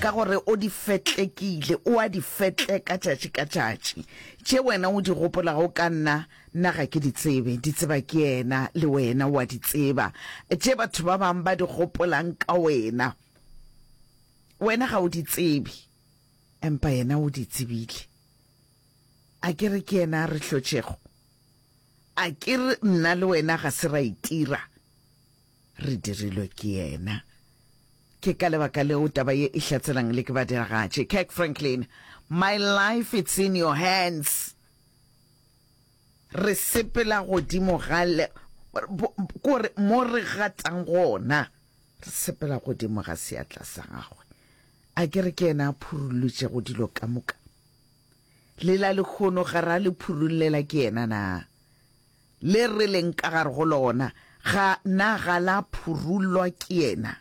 Ka gore o di fetlekile, o a di fetleka tšatši ka tšatši. Tše wena o di gopolago ka nna, nna ga ke di tsebe, di tseba ke yena, le wena o a di tseba, tše batho ba bangwe ba di gopolang ka wena, wena ga o di tsebe, empa yena o di tsebile. A ke re ke yena a re hlotšego? A ke re nna le wena ga se ra itira? Re dirilwe ke yena. Ke ka lebaka leo taba ye e hlatselang le ke badiragatši. Kirk Franklin, My life it's in your hands. Re sepela godimo ga le, kore mo re gatang gona, re sepela godimo ga seatla sa gagwe. A ke re ke yena a phurulutšego dilo ka moka? Le la lehono ga ra le phurullela ke yena na? le re leng ka gare go lona, ga na ga la phurullwa ke yena.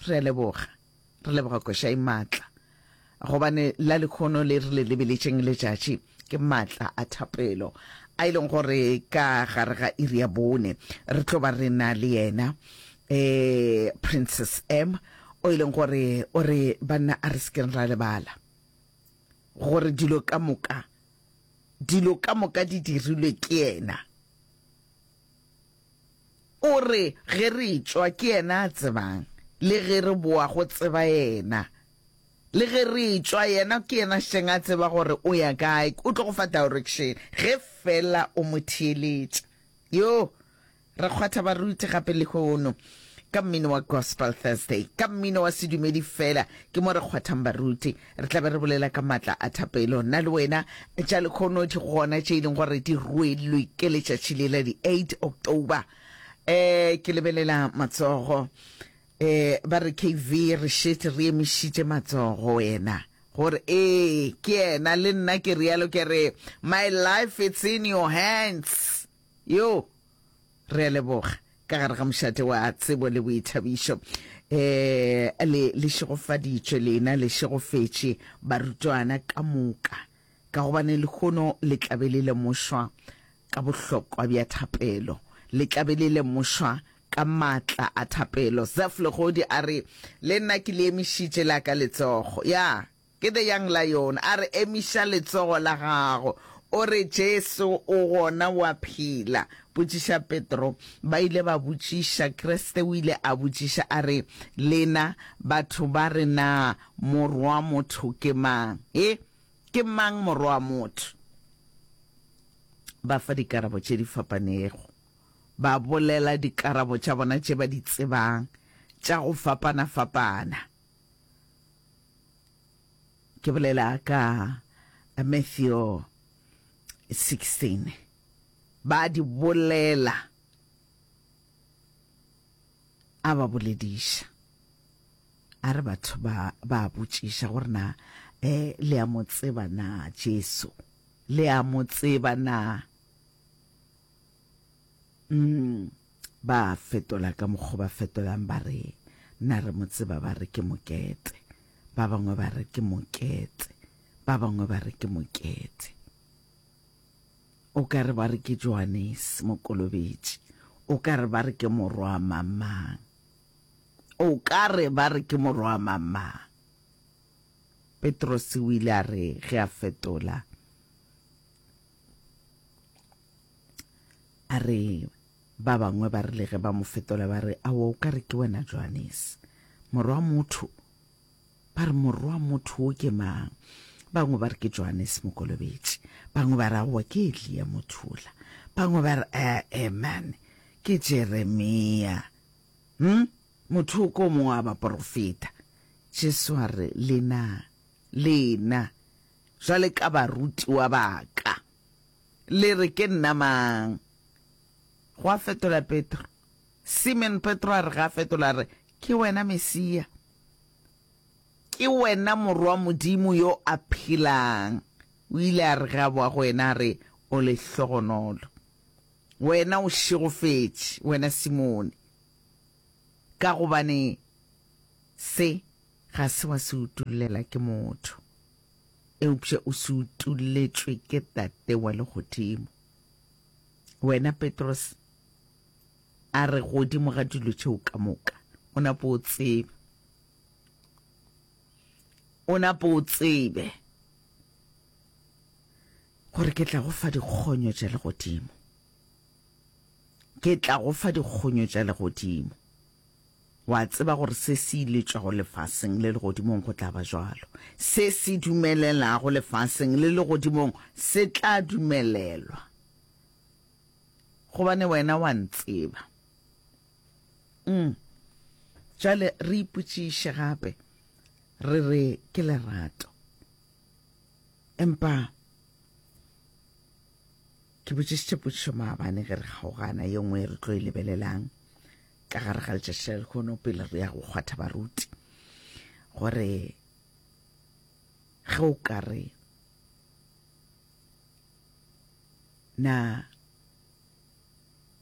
Re a leboga, re leboga koša e maatla, gobane la lekhono le re le lebeletšeng letšatši ke maatla a thapelo a e leng gore ka gare ga iri ya bone re tlo ba re na le yena um princess m o e leng gore o re banna a re sekeng ra lebala gore dilo ka moka Dilo ka moka di dirilwe ke yena. O re ge re etšwa ke yena a tsebang, le ge re boa go tseba yena. Le ge re etšwa yena ke yena šeng a tseba gore o ya kae, o tlo go fa direction ge fela o mo theeletša. Yoo! Re kgwatha baruti gape lehono ka mmino wa Gospel Thursday. Ka mmino wa sedumedi fela ke mo re kgwathang baruti. Re tla be re bolela ka matla a thapelo. Nna le wena tša lehono di gona tše e leng gore di rwelwe ke letšatši le la di 8 October. Eh, ke lebelela matsogo. Eh, ba re KV re šetše re emišitše matsogo wena. gore ee ke yena le nna ke realo ke re my life it's in your hands Yoo, re a leboga. Ka gare ga mošate wa tsebo le boithabišo, ee, le, le šegofaditšwe, lena le šegofetše barutwana ka moka, ka gobane lehono le tla be le lemošwa ka bohlokwa bja thapelo. Le tla be le lemošwa ka maatla a thapelo. Zeph Legodi a re, Le nna ke le emišitše la ka letsogo. Ya. Ke The Young Lion a re, Emiša letsogo la gago. O re, Jesu o gona, o a phela. Botšiša Petro. Ba ile ba botšiša. Kriste o ile a botšiša a re, Lena batho ba re na Morwamotho ke mang? He, ke mang Morwamotho? Ba fa dikarabo tše di fapanego. Ba bolela dikarabo tša bona tše ba di tsebang tša go fapana-fapana. Ke bolela ka Matthew 16. Ba a di bolela, a ba bolediša. A re batho ba ba botšiša gore na eh le a mo tseba na Jesu? Le a mo tseba na? Mm. Ba a fetola ka mokgo ba fetolang ba re, Na re mo tseba? Ba re, Ke mokete. Ba bangwe ba re, Ke mokete. Ba bangwe ba re, Ke mokete. O ka re ba re ke Johanese Mokolobetši. O ka re ba re ke morwa mang-mang. O ka re ba re ke morwa mang-mang. Petrose o ile a re ge a fetola, A re, Ba bangwe ba rile ge ba mo fetola ba re, Aowa o ka re ke wena Johanes, morwa motho. Ba re, Morwa motho wo ke mang? Bangwe ba re ke Johanes Mokolobetši, bangwe ba re aowa ke Elia Mothula, bangwe ba re ee man ke Jeremia. Hm, motho o ko mongwe wa baporofeta. Jesu a re, Lena, lena, jwale ka barutiwa ba ka. Le re ke nna mang? Go a fetola Petro. Simon Petro a re ga a fetola, a re, Ke wena Mesia. Ke wena Morwa Modimo yo a phelang. O ile a re ge a boa go wena, a re, O lehlogonolo. Wena o šegofetše, wena Simone, ka gobane se ga se wa se utollela ke motho. eupša o se utoletšwe ke Tate wa legodimo. Wena Petros, a re godimo ga dilo tšeo ka moka, o nape o tsebe, o nape o tsebe gore ke tla go fa dikgonyo tša legodimo, ke tla go fa dikgonyo tša legodimo. O a tseba gore se se iletšwago lefaseng le legodimong go tla ba bjalo. Se se dumelelago lefaseng le legodimong se tla dumelelwa, gobane wena wa ntseba. Umm. Bjale re ipotšiše gape, re re ke lerato. Empa. Ke botšišitše potšišo maabane ge re kgaogana, ye nngwe e re tlo e lebelelang ka gare ga letšatši la lekhono pele re ya go kgwatha baruti, gore ge o ka re na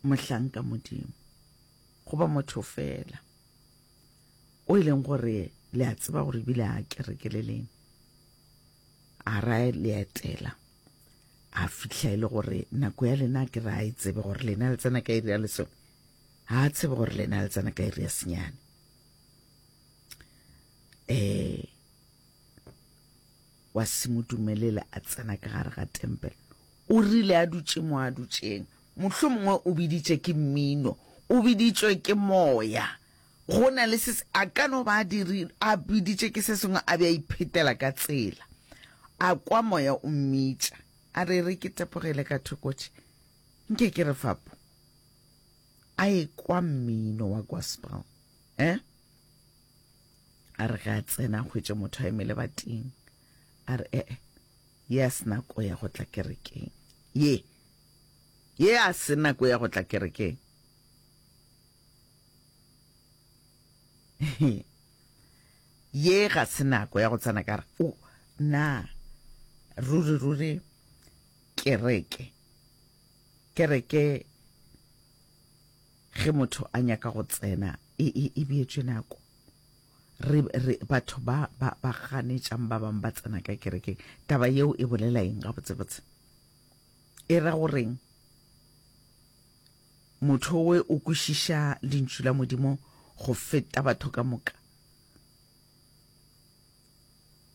mohlanka modimo goba motho fela o e leng gore le a tseba gore ebile a kerekeleleng a ra le etela a fihla e le gore nako ya lena ke re a e tsebe gore lena le tsena ka iri ya lesome ga a tsebe gore lena le tsena ka iri ya senyane um wa se mo dumelela a tsena ka gare ga tempele o rile a dutše mo a dutšeng mohlomongwe o biditše ke mmino o biditšwe ke moya Go na le se se, a ka no ba a dirile, a biditše ke se sengwe, a be a iphetela ka tsela, a kwa Moya o mmitša, a re, Re ke tepogele ka thoko tše, nke ke re fapo, a ekwa mmino wa gospel, eh? A re ge a tsena, a hwetše motho a eme lebating, a re, E-e, ye a se nako ya go tla kerekeng, ye, ye a se nako ya go tla kerekeng. Ye ga se nako ya go tsena ka re o na ruri ruri kereke kereke ge motho a nyaka go tsena e e e bietšwe nako re re batho ba ba ba ganetšang ba bang ba tsena ka kerekeng taba yeo e bolela eng ga botsebotse e ra goreng Motho we o kwešiša Lentšu la Modimo go feta batho ka moka.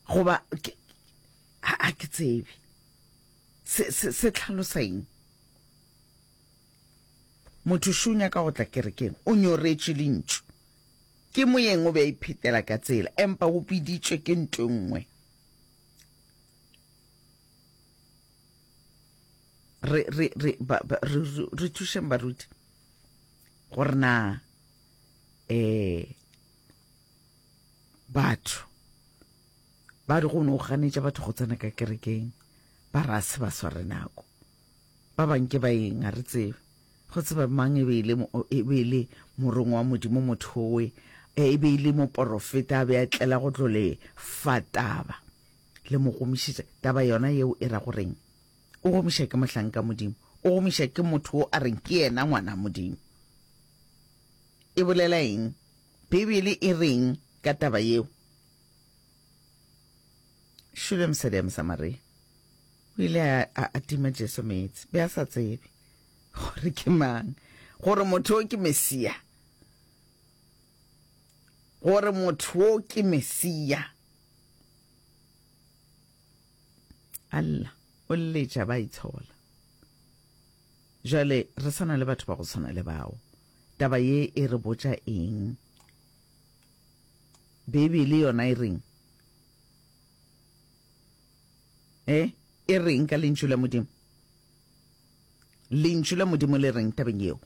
Goba, ke, ga ke tsebe. Se, se, se tlhalosa eng? Motho šo o nyaka go tla kerekeng, o nyoretše Lentšu. Ke moyeng o be a iphetela ka tsela, empa o biditšwe ke nto e nngwe. re, re, re, ba, ba, re, re, re thušeng baruti gore na um batho ba di go ne o ganetša batho go tsena ka kerekeng ba ra se ba sware nako ba banke ba eng a re tsebe go tseba mang e be e le e be e le morong wa modimo motho owe e be e le moporofeta a be a tlela go tlo le fataba le mo gomišetša taba yona yeo e ra go reng o gomiša ke mohlanka modimo o gomiša ke motho o a reng ke yena ngwana modimo e bolela eng bibele e reng ka taba yeo šule mosadi ya mosamaria o ile a tima jesu meetse be a sa tsebe gore ke mang gore motho o ke mesia gore motho wo ke Mesia. Allah o letša ba itshola. Jale re sana le batho ba go tshwana le bao. Taba ye e re botša eng? Beibele yona e reng? Eh, e reng ka lentšu la Modimo? Lentšu la Modimo le reng tabeng yeo?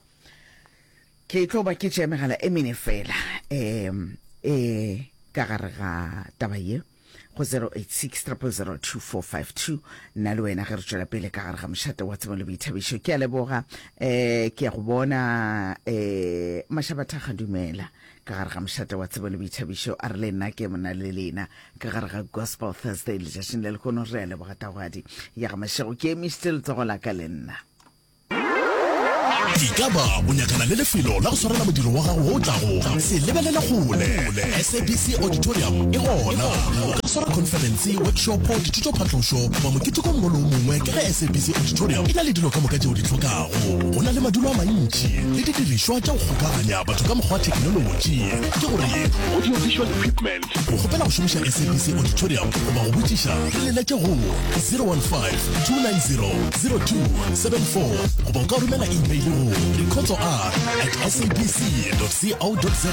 Ke tlo ba ke tšea megala e mene fela um e ka gare ga taba ye go 0860002452 nna le wena ge re tšwela pele ka gare ga mošate wa tsebo le boithabišo ke a leboga um ke ya go bona um mashabathaga dumela ka gare ga mošate wa tsebo le boithabišo a re le nna ke mona le lena ka gare ga gospel thursday letšatšing le lekono re a leboga tagwadi ya ga mašego ke emišitse letsogo la ka le nna e ka ba o nyakana le lefelo la go swarela modiro wa gago o tlago se lebelele kgole sabc auditorium e gona o ka swara conference workshopo dithuto phatlošo goba moketekong molo o mongwe ka ge sabc auditorium e na le dilo ka moka tšeo di tlhokago go na le madulo a mantši le didirišwa tša go kgokaganya batho ka mokgwa wa thekenolotši ke gore audio visual equipment go kgopela go šomiša sabc auditorium goba go botšiša re leletše go 015 290 goba o ka romela email go rekhotso r at sabc co za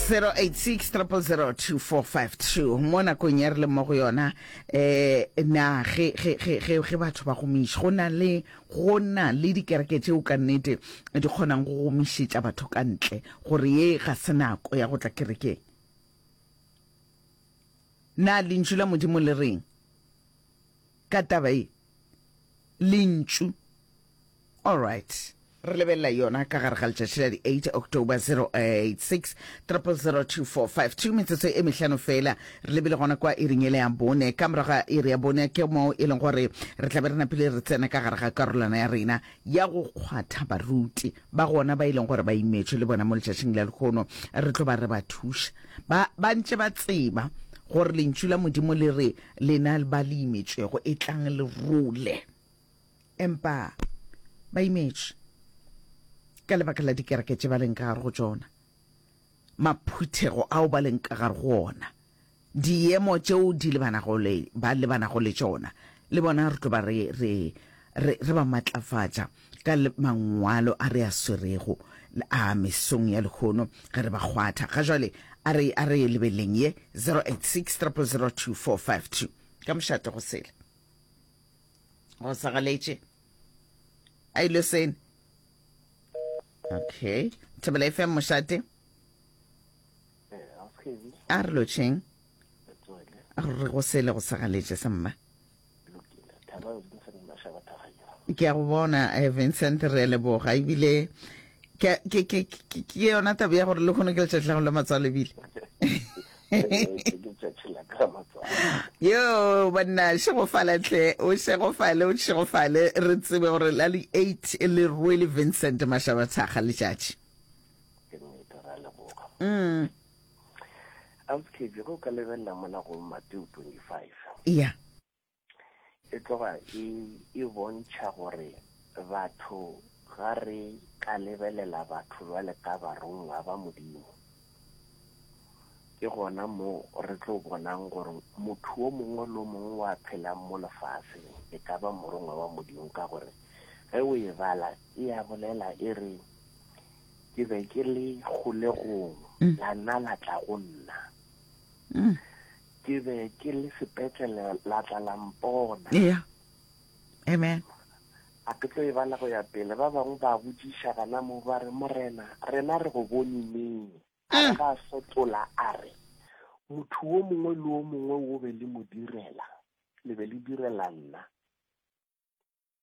086 mo nakong ya re le mo go yona eh na ge ge ge ge ge batho ba gomiša go na le go na le dikereke tšeo ka nnete di kgonang go gomišetša batho ka ntle gore ye ga se nako ya go tla kerekeng na lentšu la modimo le reng ka taba e Lentšu. All right. re lebelela yona ka gare ga letšatši la di-8 october 086 002452 metsotso e mehlano fela re lebile gona kwa iring ele ya bone ka morago ga iri ya bone ke moo e leng gore re tlabe re napile re tsena ka gare ga karolwana ya rena ya go kgwatha baruti ba gona ba e leng gore ba imetšwe le bona mo letšatšing la lekgono re tlo ba re ba thuša ba ba ntše ba tseba gore lentšu la modimo le re lena ba le imetšwego e tlang le role empa ba imetšwe ka lebaka la dikereke tše ba leng ka gare go tšona maphuthego ao ba leng ka gare go ona, diemo tšeo di lebanago le, ba lebanago le tšona, le bona re tlo ba re, re, re, re ba matlafatša ka mangwalo a re a swerego a mesong ya lehono ge re ba kgwatha. Ga jwale a re, a re lebeleng ye, 086 000 2452. Ka mošate go sele go sa galetše, a ile sene. okay thebela e fm mošate a re lotšheng re go sele go segaletše sa mma ke a go bona eh, vincent re leboga ebile ke yona taba ya gore le kgone ke letšatši la go le matswalo ebile yo banna šegofala tle o šegofale o šegofale re tsebe gore la le eight e le rwele vincent mašaba thaga letšatši mm. auskebe go ka lebelela mola go mateo 25 ya e tloga e, e bontšha gore batho ga re ka lebelela batho bjale ka barongwa ba Modimo. Ke gona mo re tlo bonang gore motho o mongwe lo mongwe wa phelang mo lefaseng e ka ba morongwa wa Modimo ka gore ge o e bala e a bolela e re ke be ke le kgolegong mm. la nna la tla go nna mm. Ke be ke le sepetlele la tla la mpona. Eya. Amen. A ke tlo e bala go ya pele. Ba bangwe ba botšiša gana mo ba re, Morena, rena re go bone neng? A re ga a sotola a re, Motho wo mongwe le wo mongwe wo be le mo direla, le be le direla nna.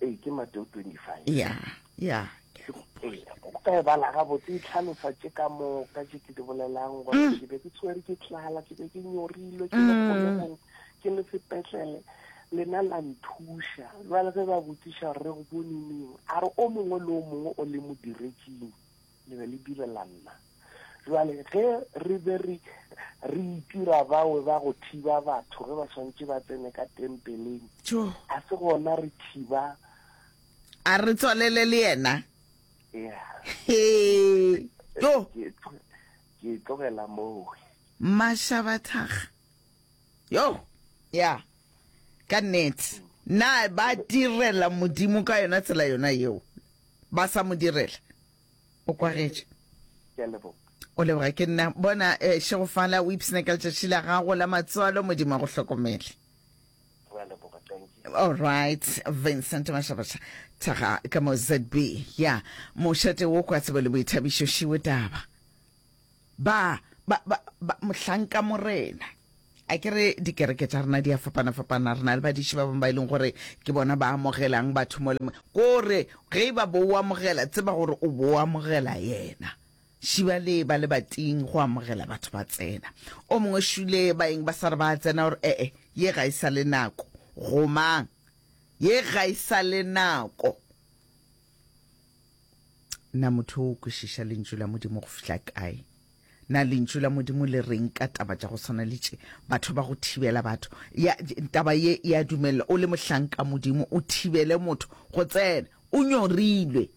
Ee, ke Mateo 25. Ya, ya, ke a gopola. Ee, o ka e bala gabotse, e tlhalosa tše ka moka tše ke di bolelang, gore ke be ke tshwere ke tlala, ke be ke nyorilwe, ke le kgolegong, ke le sepetlele, lena la nthuša. Bjale ge ba botšiša gore re go bone neng, a re o mongwe le o mongwe o le modiretšing. Le be le direla nna. Bjale, ge re be re, re itira bawe ba go thiba batho ge ba swantše ba tsene ka tempeleng, Tjo! ga se gona re thiba. A re tswalele le yena. Ya. Hee! Tjo! Ke, ke e tlogela moo. Mašabathakga. Yo! Ya. Ka nnete. Na ba direla Modimo ka yona tsela yona yeo? ba sa mo direla. O kwagetše. Ke a leboga. O leboga ke nna. Bona eh, Šegofala o ipshina ka letšatši la gago la matswalo, Modimo a go hlokomele. Re a leboga, thank you. All right, Vincent Mashabaša Thaga ka mo ZB. Ya, mošate wo kwa tsebo le boithabišo šiwe taba. Ba, ba, ba, ba, mohlanka morena. A ke re dikereke tša rena di a fapana-fapana. Re na le badiši ba bangwe ba e leng gore ke bona ba amogelang batho mo le mo. Ko re, ge e ba bo o amogela, tseba gore o bo o amogela Yena. Šiba le ba le bating go amogela batho ba tsena. O mongwe šule ba eng ba sa re ba a tsena, o re, E-e, ye ga e sa le nako. Go mang? Ye ga e sa le nako. Na motho o kwešiša Lentšu la Modimo go fihla kae? Na Lentšu la Modimo le reng ka taba tša go swana le tše? Batho ba go thibela batho. Ya, taba ye ya dumelela o le mohlanka Modimo o thibele motho go tsena. O nyorilwe.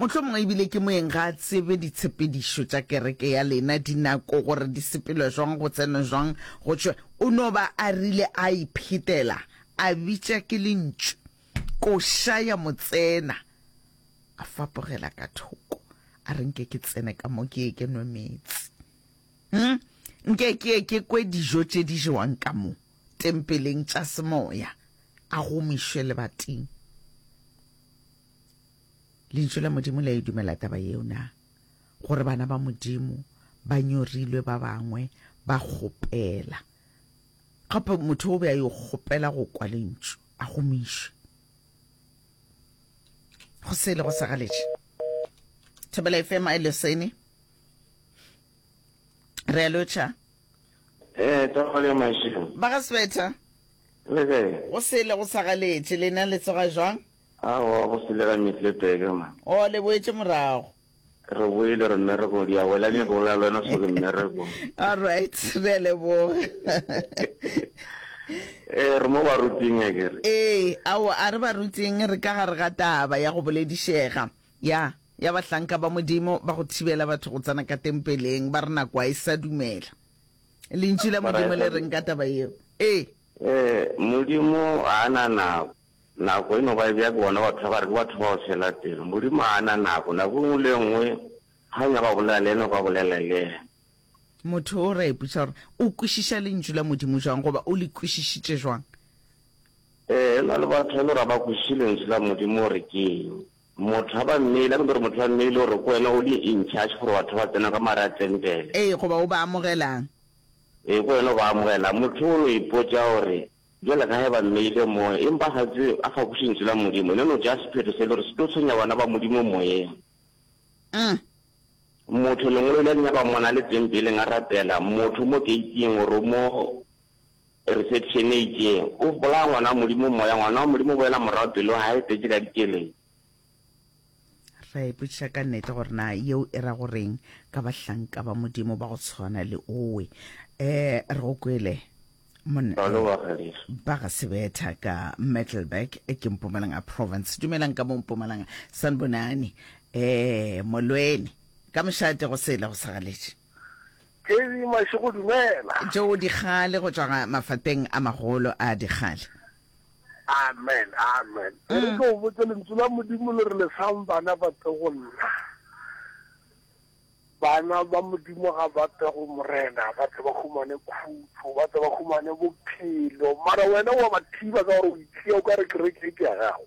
Mohlomongwe ebile ke moeng ga a tsebe ditshepedišo tša kereke ya lena, dinako gore di sepelwe jwang, go tsenwe jwang, go tšwe. O no ba a rile a iphetela, a bitša ke Lentšu. Koša ya mo tsena, a fapogela ka thoko, a re, Nke ke tsene ka mo ke ye ke nwe meetse. Hm, nke ke ye ke kwe dijo tše di jewang ka mo tempeleng tša semoya, a gomišwe lebating. Lentšu la Modimo le a e dumela taba yeo na, gore bana ba Modimo ba nyorilwe ba bangwe ba kgopela? Gape motho o be a yo kgopela go kwa lentšu, a gomišwe. Go se ilego sa galetše. Thobela FM a leseni. Re a lotšha. Ee, tsogo le mašilo. Ba ga Sebetha. Le ge. Go se ile go sa galetše, lena le tsoga jwang? Aowa, go se le ga Mitlebeke ma. O le boetše morago. Re boile re mmereko di a wela nyako ya lwena so ke mmereko. All right, re a leboga. Eh re mo ba ruting a kere. Ee, ao a re ba ruting re ka gare ga taba ya go boledišega. Ya, ya bahlanka ba Modimo ba go thibela batho go tsena ka tempeleng ba re nako a e sa dumela. Lentšu la Modimo le reng ka taba yeo? Ee. Eh, Modimo a na nako. Nako e no ba e bjake bona batho ba gare ke batho bao fela teng. Modimo ga a na nako. Nako e nngwe le e nngwe ga o nyaka go bolela le yena o ka bolela le yena. Motho o ra ipotša gore o kwešiša Lentšu la Modimo bjang goba o le kwešisitše bjang. Ee, go na le batho e le gore ga ba kwešiše Lentšu la Modimo gore ke eng. Motho ga ba mmeile, a ke no re motho ba mmeile gore ke wena o le in charge gore batho ba tsena ka mo gare ga tempele. Ee, goba o ba amogelang. Ee, ke wena o ba amogelang. Motho o no ipotša gore Bjale ga eba mmeile moya, empa ga tse a fapoše Lentšu la Modimo, le no tšea sephetho se le gore se tlo tshwenya bana ba Modimo moyeng. Aa! Motho lengolo ile a di nyaka mona le tempeleng a rapela, motho mo keiting oro mo reception e itšeng, O bolaya Ngwana wa Modimo moya, Ngwana wa Modimo o boela morago pelo ya gage e tletše ka dikeleng. Ra ipotšiša ka nnete gore na yeo e ra goreng ka bahlanka ba Modimo ba go tshwana le owe. Eh, re go kwele. Balo wa Galisa. Ba ga Sebetha ka Metalburg, e ke Mpumalanga Province. Dumelang ka mo Mpumalanga. Sanbonani. Eh, Molweni. Ka mošate go sele go sa galetše. Kedi Mašego dumela. Tšeo dikgale go tšwa mafapeng a magolo a dikgale. Amen, amen. E re ke go botse lentsu la Modimo le re le sang bana ba tle go nna. Bana ba Modimo ga ba tle go Morena ba tle ba humane khutšo, ba tle ba humane bophelo. Mara wena wa ba thiba ka gore o itshiya o ka re kereke e ke ya gago.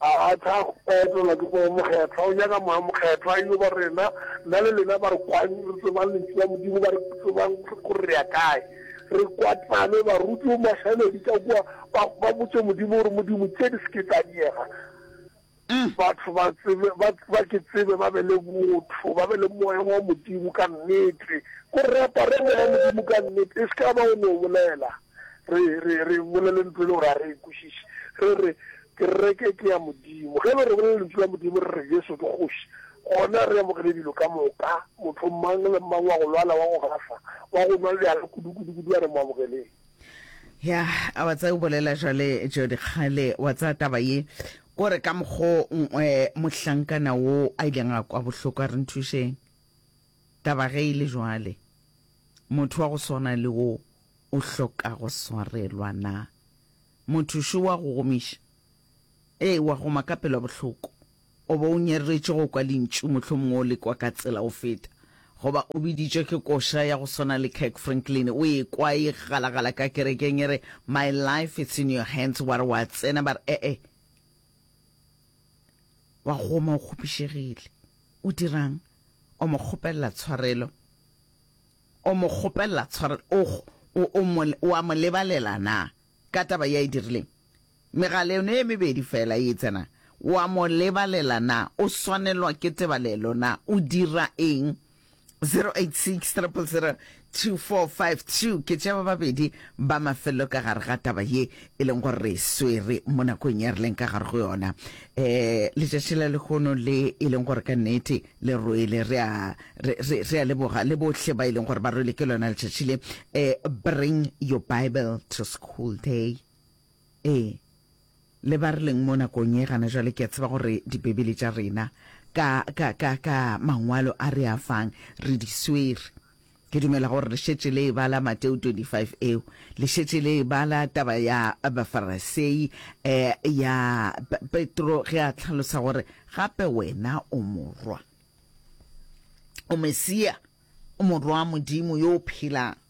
A a tla etelwa ke Moya Mokgethwa. O nyaka Moya Mokgethwa a yo ba rena. Nna le lena ba re kwang re tsebang Lentšu la Modimo, ba re tsebang gore re ya kae, re kwatlane. Baruti o mašaledi ka kua, ba, ba botše Modimo gore, Modimo, tše di se ke tša diega. Batho ba tsebe, ba, ba ke tsebe, ba be le botho, ba be le Moya wa Modimo ka nnete. Ko re apare Moya wa Modimo ka nnete, e se ka ba o no bolela. Re, re, re bolele ntlo e le gore a re e kwešiše. Re re, Kereke ke ya Modimo. Ge e le gore re bolele Lentšu la Modimo, re re, Jesu ke Kgoši, gona re amogele dilo ka moka. Motho mang le mang wa go lwala, wa go gafa, wa go nwa bjala kudu, kudu, kudu, a re mo amogeleng. Ya, a wa tsaya, o bolela jwale, Jodi, kgale wa tsaya taba ye, kore ka mokgwa o, eh, mohlankana wo a ileng a kwa bohloko, a re, Nthušeng. Taba ge e le bjale, motho wa go swana le wo o hloka go swarelwa na? Motho šo wa go gomiša? Ee, wa goma ka pelo bohloko. O be o nyeretše go kwa lentšu, mohlomongwe o le kwa ka tsela go feta. Goba o biditšwe ke koša ya go swana le Kirk Franklin, o e kwa e galagala ka kerekeng e re, My life it's in your hands, wa re wa tsena, ba re, E-e, Wa goma o kgopišegile. O dirang? O mo kgopelela tshwarelo. O mo kgopelela tshwarelo. O, o, o, mo, o a mo lebalela na ka taba ya e dirileng? Megala yone e mebedi fela e tsena. O a mo lebalela na? O swanelwa ke tebalelo na? O dira eng? 0860002452 ke tša ba babedi ba mafelelo ka gare ga taba ye e leng gore re swere mo nakong ya re leng ka gare go yona um letšatši la lekgono le e leng gore ka nnete le rwele re a leboga le bohle ba e leng gore ba rwele ke lona letšatši le um bring your bible to school day Ee, le ba re leng mo nakong ye gana jwale, ke a tseba gore Dibibele tša rena ka, ka, ka, ka Mangwalo a re a fang, re di swere. Ke dumela gore le šetše le e bala Mateo 25 eo, le šetše le e bala taba ya Bafarasei, eh, ya Pe, Petro ge a hlalosa gore gape wena o Morwa, o Mesia, o Morwa wa Modimo yo o phelang.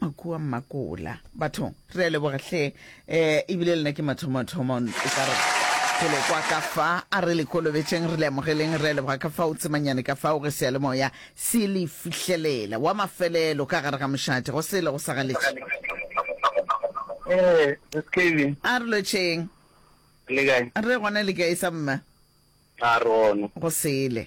Makua Mmakola. Batho, re a leboga hle. Eh, ebile lena ke mathomo-thomo, e ka re pele kwa ka fa a re le kolobetšeng re le amogeleng re a leboga ka fao tsemanyane ka fao ge seyalemoya se le fihlelela wa mafelelo ka gare ga mošate go sele go sa galetše Eh, skv. a re lotšheng Le kae? re gona le kae sa mma A re gona. go sele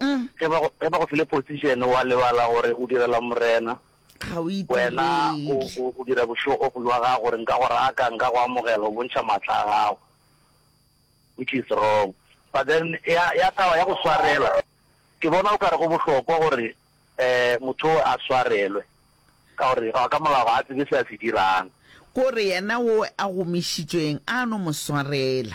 Mm. ge ba go ge ba go file position wa lebala gore o direla morena ga o wena o itirele o- o dira bošogo go lwa gago gore nka go raka nka go amogela o bontšha maatla a gago which is wrong but then ya ya taba ya go swarela ke bona o kare go bohlokwa gore eh motho o a swarelwe ka gore ga ka molao ga a tsebe se a se dirang kore yena o a gomišitšweng a no mo swarela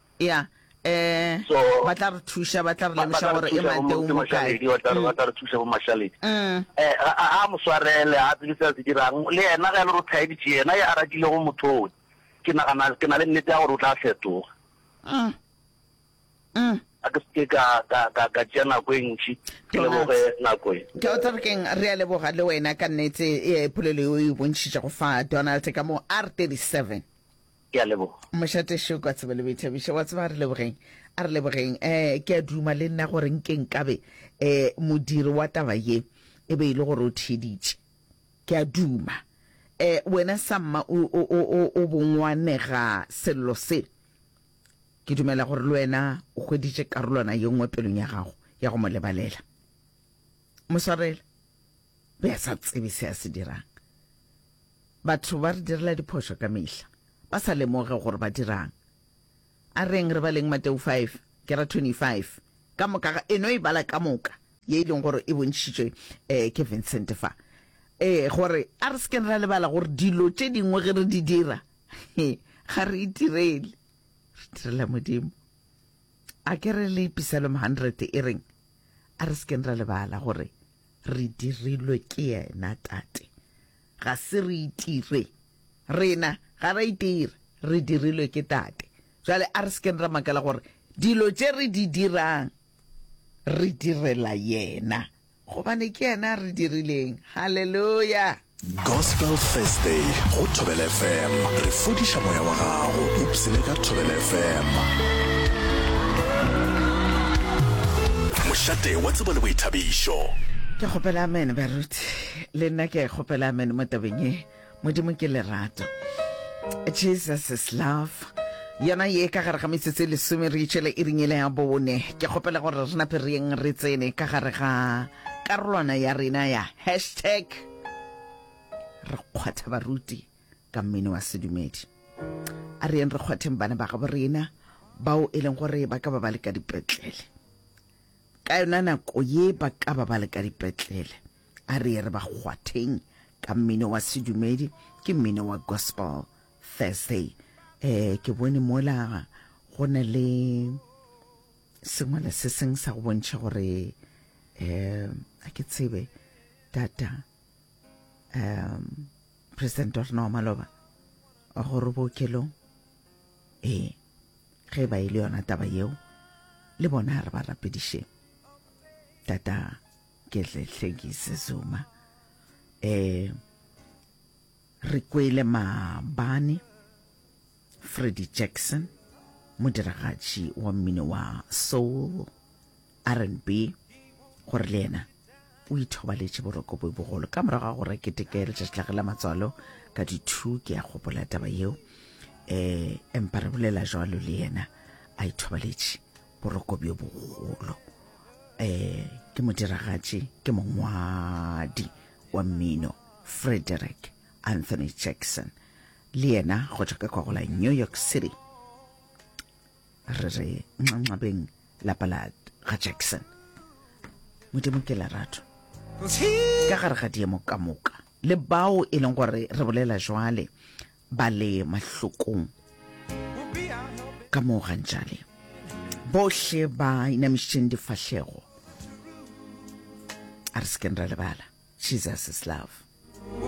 ya um ba tla re thuša ba tla re lemoša gore e mateo mo kae ba tla re thuša bo mašaledi um a mo swarele a tsebe se a se dirang le yena ge le ro thaeditše yena ya ratile go mothong ke nagana ke na le nnete ya gore o tla fetoga um um a ke seke ka ka ka ka tšea nako e ntši ke leboge nako e ke o tla re keng re a leboga le wena ka nnete e polelo e o e bontšhitšego fa donald ka mo r 37 Ke a leboga. Mošate Šoko a tsebe le boithabiša. Wa tseba a re lebogeng, a re lebogeng. Um ke a duma le nna gore nke nkabe um modiri wa taba ye e be e le gore o theeditše. Ke a duma. Um wena Samma o, o, o, o, o bongwanega sello se. Ke dumela gore le wena o hweditše karolwana ye nngwe pelong ya gago ya go mo lebalela. Mo swarele. Be a sa tsebe se a se dirang. Batho ba re direla diphošo ka mehla, ba sa lemoge gore ba dirang. A reng re baleng Mateo 5, ke ra 25, ka moka ga, e no e bala ka moka, ye e leng gore e bontšhitšwe um ke Vincent fa, ee, gore a re se keng ra lebala gore dilo tše dingwe ge re di dira, ga re itirele, re direla Modimo. A ke re le Psalm 100 e reng, A re se keng ra lebala gore re dirilwe ke yena Tate. Ga se re itire. Rena ga ra itira, re dirilwe ke Tate. Bjale a re se keng ra makala gore dilo tše re di dirang re direla yena, gobane ke yena a re dirileng. Haleluya! Gospel Thursday go Thobela FM, re fodiša moya wa gago, ipsene ka Thobela FM. Mošate wa tsebo le boithabišo. Ke kgopela amen baruti. le nna ke a kgopela amen mo tabeng e modimo ke lerato jesus is love yona ye ka gare ga metsotso e lesome re itšhele e ringele ya bone ke kgopela gore re nape re yeng re tsene ka gare ga karolwana ya rena ya hashtag re kgwatha baruti ka mmino wa sedumedi a re yeng re kgwatheng bana ba gabo rena bao e leng gore ba ka ba ba le ka dipetlele ka yona nako ye ba ka ba ba le ka dipetlele A re ye re ba kgwatheng ka mmino wa sedumedi, ke mmino wa gospel Thursday. Eh, ke bone mola go na le sengwala se seng sa go bontšha gore eh a ke tsebe tata um president wa rena wa maloba wa gore bookelong ee eh, ge ba ile e yona taba yeo le bona re ba rapediše tata ke tle hlekise zuma eh re kwele maabane freddy jackson modiragatši wa mmino wa soul rnb gore le yena o ithobaletše boroko bo bogolo ka morago ga gore keteke ya letšatši la ge la matswalo ka di-two ke ya gopola taba yeo um empa re bolela jalo le yena a ithobaletše boroko bjo bogolo um ke modiragatši ke mongwadi wa mmino frederick anthony jackson le yena go tšwa ka kwagola new york city re re nxanxabeng lapa la ga jackson modimo ke lerato ka gare ga diemo ka moka le bao e leng gore re bolela jwale ba le mahlokong ka moo gantšale bohle ba inamišitšeng difahlego a re sekeng ra lebala jesus is love